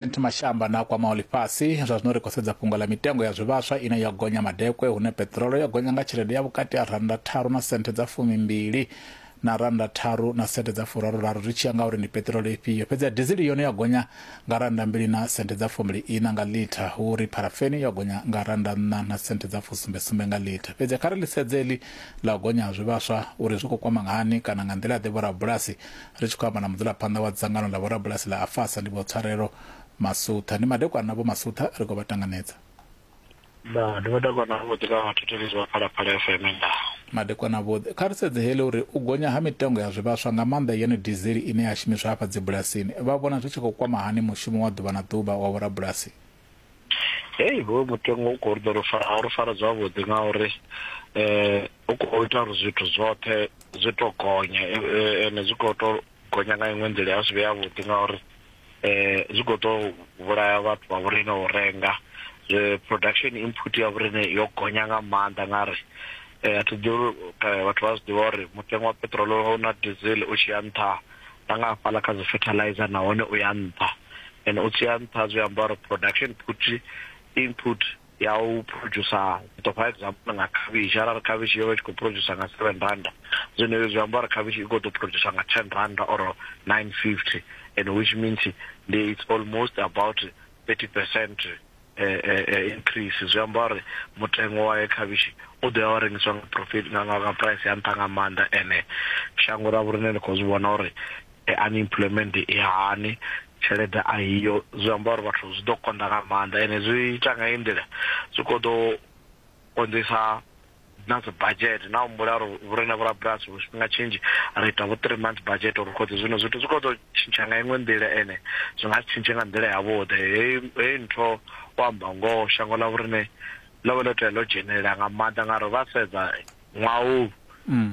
President Mashamba na kwamaho ḽifhasi zwa zwino ri khou sedza fhungo ḽa mitengo ya zwivhaswa ine yo gonya madekwe hune peṱirolo yo gonya nga tshelede ya vhukati ha rannda tharu na senthe dza fumimbili na rannda tharu na senthe dza furaruraru zwi tshi ya nga uri ndi peṱirolo ifhio. Fhedzi ya dizili yone yo gonya nga rannda mbili na senthe dza fumbili ina nga litha, hu uri pharafeni yo gonya nga rannda nṋa na senthe dza fusumbe sumbe nga litha. Fhedzi kha ri ḽi sedze heḽi ḽa u gonya ha zwivhaswa uri zwi khou kwama nga hani kana nga nḓila-ḓe vhorabulasi Ri tshi khou amba na mudzulaphanḓa wa dzangano ḽa vhorabulasi ḽa Afasa ndi Vho Tswarelo Masutha. Ndi madekwana Vho Masutha ri khou vha tanganedza. Ndaa, ndi madekwana avhuḓi na vhathetshelesi vha Phalaphala FM. Ndaa. Madekwana avhuḓi. Kha ri sedze heḽi uri u gonya ha mitengo ya zwivhaswa nga maanḓa yone dizili ine ya shumiswa hafha dzibulasini vha vhona zwi tshi khou kwama hani mushumo wa ḓuvha na ḓuvha wa vhorabulasi. hei hoyo mutengo u khou ri ḓo a ri fara zwavhuḓi nga uri um u khou ita uri zwithu zwoṱhe zwi to gonya e, e, ende zwi khou to gonya nga iṅwe nḓila ya zwi vhe yavhuḓi nga uri um zwi khou to vhulaya vhathu vha vhorine u renga production input ya vhorine yo gonya nga maanḓa nga ri um a thi ḓivhi vhathu vha zwi ḓivha uri mutengo wa peṱirolo na diesel u tshi ya nṱha na nga hafhaḽa kha dzi fertilizer nahone u ya nṱha and u tsi ya nṱha zwi amba uri production put input ya u producer to for example nga khavhishi arali khavhishi yo vha tshi khou producer nga 7 randa zwino zwi amba uri khavhishi i khou ḓo producer nga 10 randa or 950 and which means it's almost about 30% increase zwi amba uri mutengo wa khavhishi u ḓo ya wa rengiswa nga profit nga nga nga price ya nṱha nga maanḓa ene shango ra vhorine ni khou zwi vhona uri unemployment i hani tshelede a hiyo zwi amba uri vhathu zwi ḓo konḓa nga maanḓa ene zwi ita nga i nḓila zwi khou ḓo konḓisa na dzi budget na humbula uri vhurine vhorabulasi vhu tshifhinga tshinzhi ri ita vho three months budget uri khodzi zwino zwithu zwi khou ḓo tshintsha nga iṅwe nḓila ene zwi nga si tshintshe nga nḓila yavhuḓi heyi ntho u amba ngoho shango ḽa vhorine ḽo vha ḽo tea ḽo dzhenelela nga maanḓa ngauri vha sedza ṅwaha u mm.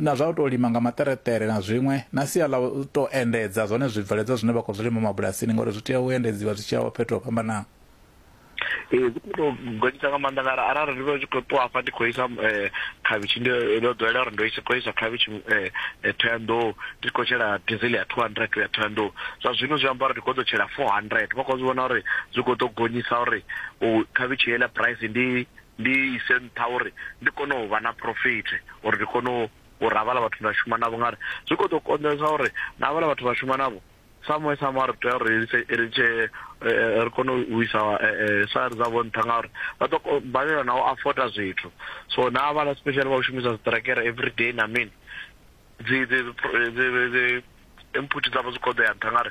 na zwa u tou lima nga maṱereṱere na zwiṅwe na sia ḽa u tou endedza zwone zwibveledzwa zwine vha khou zwi lima mabulasini ngauri zwi tea u endedziwa zwi tshi ya fhethu ho fhambanaho ee zwi khou tou gonyisa nga maanḓa ngauri arali ndi vha tshi khou ṱuwa hafha ndi khou isa um eh, khavhishi ndi ndo ḓowela uri ndo isa khou isa khavhishi um eh, eh, thoyandou ndi khou tshela diesel ya two hundred ya thoyandou zwa zwino zwi amba uri ndi khou ḓo tshela four hundred vha khou zwi vhona uri zwi khou ḓo gonyisa uri u khavhishi heiḽa price ndi ndi ise nṱha uri ndi kone u vha na profit uri ndi kone u uri havhala vhathu nda shuma navho ngari zwi kho ḓo konḓesa uri na havhala vhathu vha shuma navho samwe samwe ri tea uri ri tshe eh, ri kone u isa eh, eh, sari dzavho nṱha ngauri vha ḓo balelwa na u afoda zwithu so na havhala special vha u shumisa zwiṱirekere every day na mini dzi dzi dzi input dzavho dzi kho ḓo ya nṱha ngari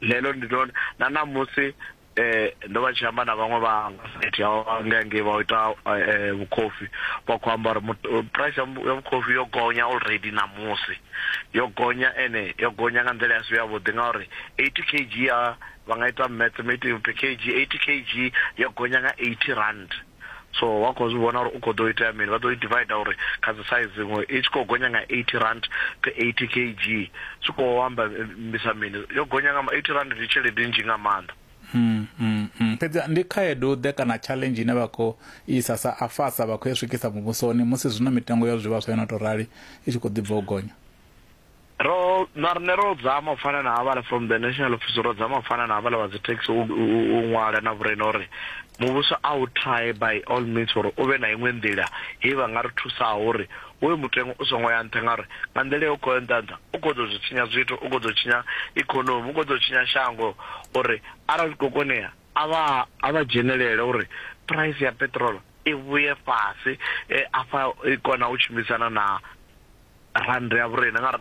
lelo ndi ḽone na ṋamusi eh ndo vha tshi amba na vhaṅwe vha nga site ya nga nge vha ita eh, vhukhofi vha khou amba uri eh, price ya vhukhofi yo gonya already na musi yo gonya ene yo gonya nga nḓila ya si ya vhuḓi ngauri 80 kg ya vha nga ita mathematics per kg 80 kg yo gonya nga 80 rand so wa khou zwi vhona uri u khou ḓo itea mini vha ḓo i divider uri kha dzi size iṅwe i tshi khou gonya nga 80 rand to 80 kg zwi khou amba eh, mbisa mini yo gonya nga 80 rand ndi tshelede nnzhi nga maanḓa hmm, hmm, hmm. fhedzi ndi khaedu ḓe kana challenge ine vha khou isa sa afasa vha khou ya swikisa muvhusoni musi zwino mitengo ya zwivhaswa yo no tou rali i tshi khou ḓi bva u gonya Ro, na riṋe ro dzama u fana na havhala from the national office, ro dzama u fana na havhala vha dzi taxi u, u, u ṅwala na vhurena uri muvhuso a u try by all means uri u vhe na iṅwe nḓila he vha nga ri thusaho uri hoyu mutengo u songo ya nṱha ngauri nga nḓila yo khou ya nṱha nṱha u khou ḓo zwi tshinya zwithu, u khou ḓo tshinya economy, u khou ḓo tshinya shango uri arali zwi khou konea a vha, a vha dzhenelele uri price ya peṱirolo i vhuye fhasi, afha i kona u tshimbidzana na rannda ya vhurena ngauri na.